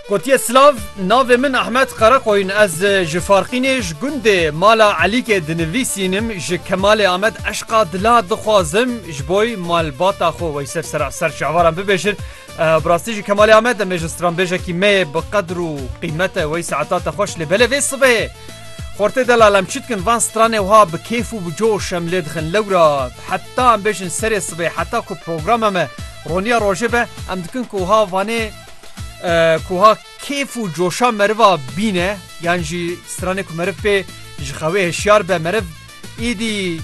Gotiye silav navê min Ahmet Qereqoyn ez ji Farqînê ji gundê mala Elîkê dinivîsînim ji Kemalê Amed eşqa dila dixwazim ji boy malbata xwe weyser sera ser çavaran bibêjin bi rastî ji Kemalê Amed em ê ji stranbêjekî me yê bi qedr û qîmete wey saeta te xweş lê belê vê sibê Xortê delal em çi dikin van stranê wiha bi kêf û bi coş em lê dixin lewra heta em bêjin serê sibê heta ku program em e Roniya rojê be em dikin ku wiha vanê ku ha kêf û coşa meriva bîne yan jî stranê ku meriv pê ji xewê hişyar be meriv îdî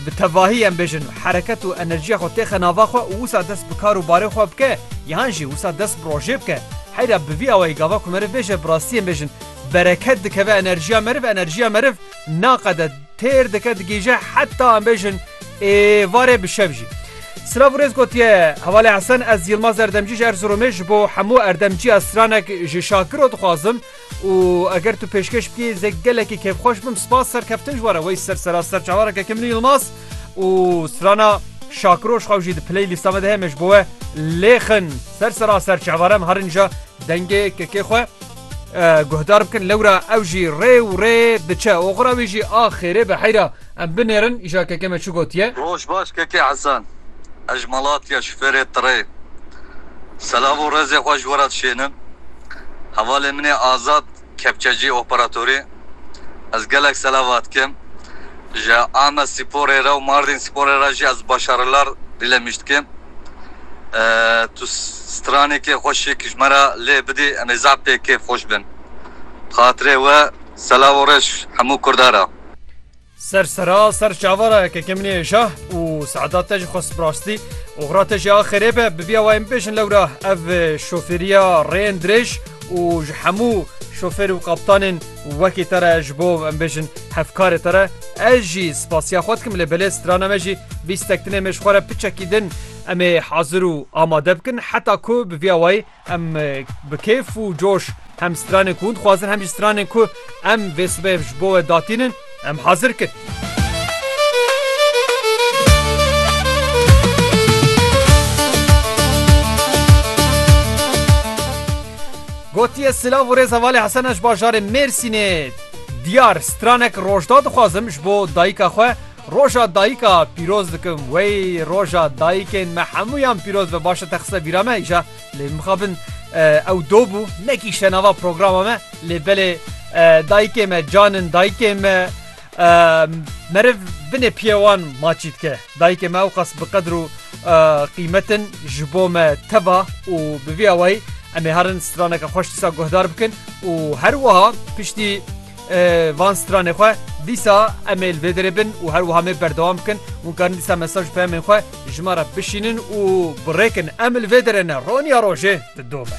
bi tevahî em bêjin hereket û enerjiya xwe têxe nava xwe û wisa dest bi kar û barê xwe bike yan jî wisa dest bi rojê bike heyra bi vî awayî gava ku meriv bêje bi rastî em bêjin bereket dikeve enerjiya meriv enerjiya meriv Naqede têr dike digihîje heta em bêjin êvarê bi şev jî. Silav û rêz gotiye Hevalê Hesen ez Yilmaz Erdemcî ji Erziromê ji bo hemû erdemciya stranek ji Şakiro dixwazim û eger tu pêşkêş bikî ez ê gelekî kêfxweş bim spas serkeftin ji we re wey ser sera ser çavareke ke min û Yilmaz û strana Şakiro ji xwe jî di play lîsta me de heye me ji bo we lêxin ser sera ser çavare em herin ja dengê kekê xwe Guhdar bikin lewra ew jî rê û rê diçe. Oxira wî jî a xêrê bi heyra. Em binêrin îşa keke me çi gotiye. Roj baş keke Hesen. Ez ji Malatya şufêrê tirê. Selav û rezê xwe ji we re dişênim. Hevalê min ê Azad Kepçecî operatorê. Ez gelek selavat dikim. Ji Amed Sîporê re û Mardîn Sîporê re jî ez Başarlar dîlemîj dikim. tu stranekê xwe şik ji me re lê bidî em ê zaf pê kêf xweş bin. Bi xatirê we selav û reş hemû kurda re. Ser sera ser çava re keke min ê şah û seeda te ji xwest rastî oxira te jî axirê be bibiya wayên bibêjin lewra ev şofêriya rêyên dirêj û ji hemû şofêr û kaptanên Wekî te re ji bo em bêjin hevkarê te re ez jî spasiya xwe dikim lê belê strana me jî bîstek din êmê ji xwe re piçekî din em ê hazir û amade bikin heta ku bi vî awayî em bi kêf û coş hem stranên ku hûn dixwazin hem jî stranên ku em vê sibê ji bo we datînin Em hazir kin. Gotiye silav û rêza valê Hesena ji bajarê Mêrsînê diyar stranek rojda dixwazim ji bo dayika xwe roja dayika pîroz dikim wey roja dayikên me hemûyan pîroz be baş te xise bîra me îja Lê mixabin ew do bû nekîşte nava programa me lê belê dayikê me canin dayikê me meriv binê piye wan maçî dike dayikê me ew qas bi qedr û qîmetin ji bo me teva û bi vî awayî em ê herin straneke xweş disa guhdar bikin û her wiha piştî Van stranê xwe dîsa em ê li vê derê bin û her wiha mê berdewam bikin. Hûn karin dîsa mesaj peyamên xwe ji me re bişînin û birêkin. Em li vê derê ne roniya rojê didome.